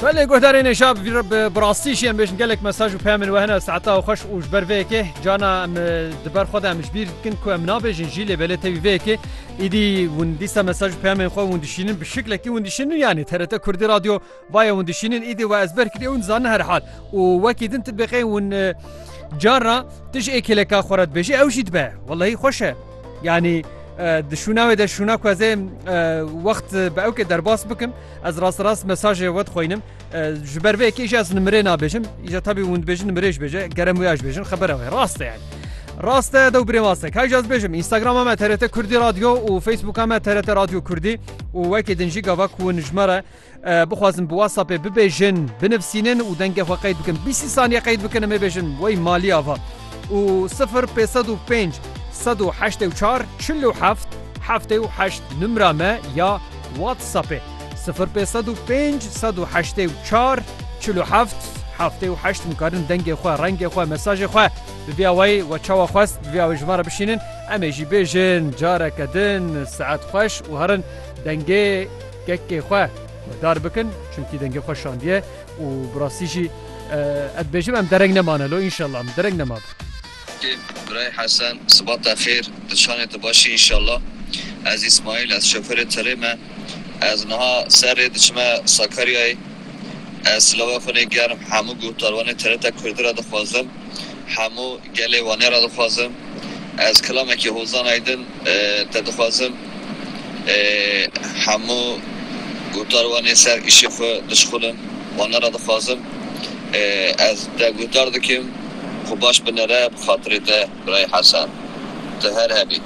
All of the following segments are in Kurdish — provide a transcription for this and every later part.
Belê guhdarê nêşa bi rastî jî em bêjin gelek mesaj û peyamên we hene saeta xweş û ji ber vê yekê cana em di ber xwe de em ji bîr dikin ku em nabêjin jî lê belê tevî vê yekê îdî hûn dîsa mesaj û peyamên xwe hûn dişînin bi şiklekî hûn dişînin yanî TRT Kurdî Radyo vaye hûn dişînin îdî we ez ber kirî hûn dizanin herhal û wekî din tu bêqey hûn carna tu ji êkêleka xwe re dibêjî ew jî dibe wellahî xweş e. Yanî di şûna wê de şûna ku ez ê wext bi ewkê derbas bikim ez rast rast mesajê we dixwînim ji ber vê kêjî ez nimirê nabêjim îja tabî hûn dibêjin nimirêj bêje gerem wê ez bêjin xebera wê rast e rast e dew birê waste kay ez bêjim Instagrama me TRT Kurdî radyo û Facebooka me TRT radyo Kurdî û wekê din jî gava ku nijmere Bixwazin bi WhatsAppê bibêjin, binivîsînin û dengê xwe qeyd bikin. Bîst saniye qeyd bikin em ê bêjin wey malî ava. Û sifir pê sed û pênc sed û heştê û çar çil û heft heftê û heşt nimra me ya WhatsAppê. Sifir pê sed û pênc sed û heştê û çar çil û heft heftê û heşt nikarin dengê xwe, rengê xwe, mesajê xwe bi vîya wey we çawa xwest bi vîya wey ji me re bişînin. Em ê jî bêjin careke din saet xweş û herin dengê. Kekê xwe dar bikin çimkî dengê xwe şandiye û bi rastî jî ez dibêjim em dereng nemane lo înşallah em dereng nemabe. Kekê Birayê Hesen sibat te xêr tu çanê tu baş î înşallah ez Îsmaîl ez şofêrê tirê me ez niha ser rê diçime Sakaryayê ez silava xwe nê germ hemû guhdarwanê TRT Kurdî ra dixwazim Hemû gelê Wanê re dixwazim. Ez kilamekî hozan aydin te dixwazim. Hemû guhdar Wanê ser îşê xwe dişixulin. Wanê re dixwazim. Ez te guhdar dikim xwe baş binêre bi xatirê te Birayê Hesen. Tu her hebî.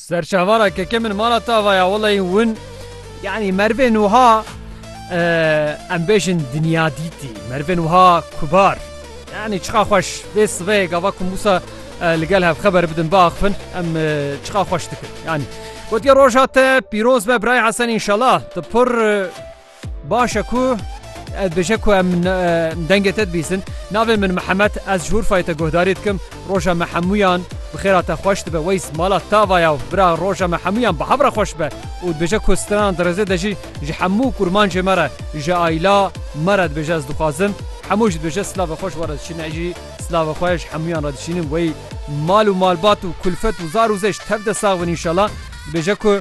Serçavara keke min mala tava ya wellahî hûn yanî mervên wiha em bêjin dinya dîtî mervên wiha kubar yanî çiqa xweş vê siveyê gava ku mûsa li gel hev xeber bidin biaxivin em çiqa xweş dikin yanî gotiye roja te pîroz be birayê Hesen înşallah tu pir Baş e ku ez bêje ku em dengê te dibîsin. Navê min Mihemed, ez ji Urfayê te guhdarî dikim. Roja me hemûyan bi xêra te xweş dibe. Weys, mala tava ya bira roja me hemûyan bi hev re xweş be û dibêje ku stranan di rêzê de jî ji hemû kurmancê me re, ji aîla me re dibêje ez dixwazim hemû jî dibêje silavê xwe ji we re dişînin. Ez jî silavê xwe ji hemûyan re dişînim. Wey mal û malbat û kulfet û zar û zêş tev de sax bin înşela. Dibêje ku.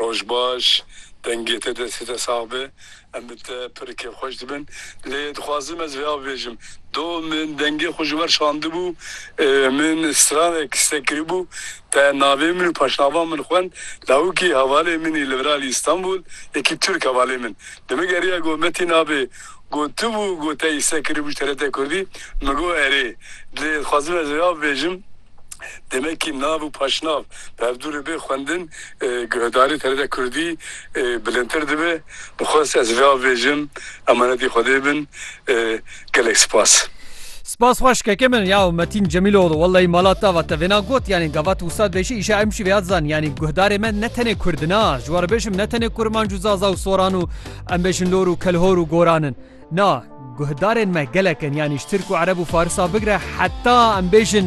Roj baş, dengê te destê te sax be. Em bi te pir kêfxweş dibin. Lê dixwazim ez vêya bibêjim, do min dengê xwe ji wer şandibû, min stranek stek kiribû, te navê min û paşnava min xwend, lawikî hevalê min î li vir alî Îstanbul, yekî Tirk hevalê min. Demê geriya got me tî navê. Gotibû ku te îse kiribû ji TRT Kurdî, min got erê. Lê dixwazim ez ê av bêjim, demekî nav û paşnav berdûrê bê xwendin guhdarî TRT Kurdî bilindtir dibe. Min xwest ez vê av bêjim, emanetî Xwedê bin. Gelek spas. Spas xweş keke min. Ya Metin Cemiloğlu wellahî mala te va te vêna got yanî gavat wisa dibêjî îşa em jî vêya dizan yanî guhdarê me ne tenê Kurd na ji we re bêjim ne tenê Kurmanc û Zaza û Soran û Em bêjin lor û kelhor û goran in. Na, guhdarên me gelek in yanî ji tirk û ereb û farisa bigire heta em bêjin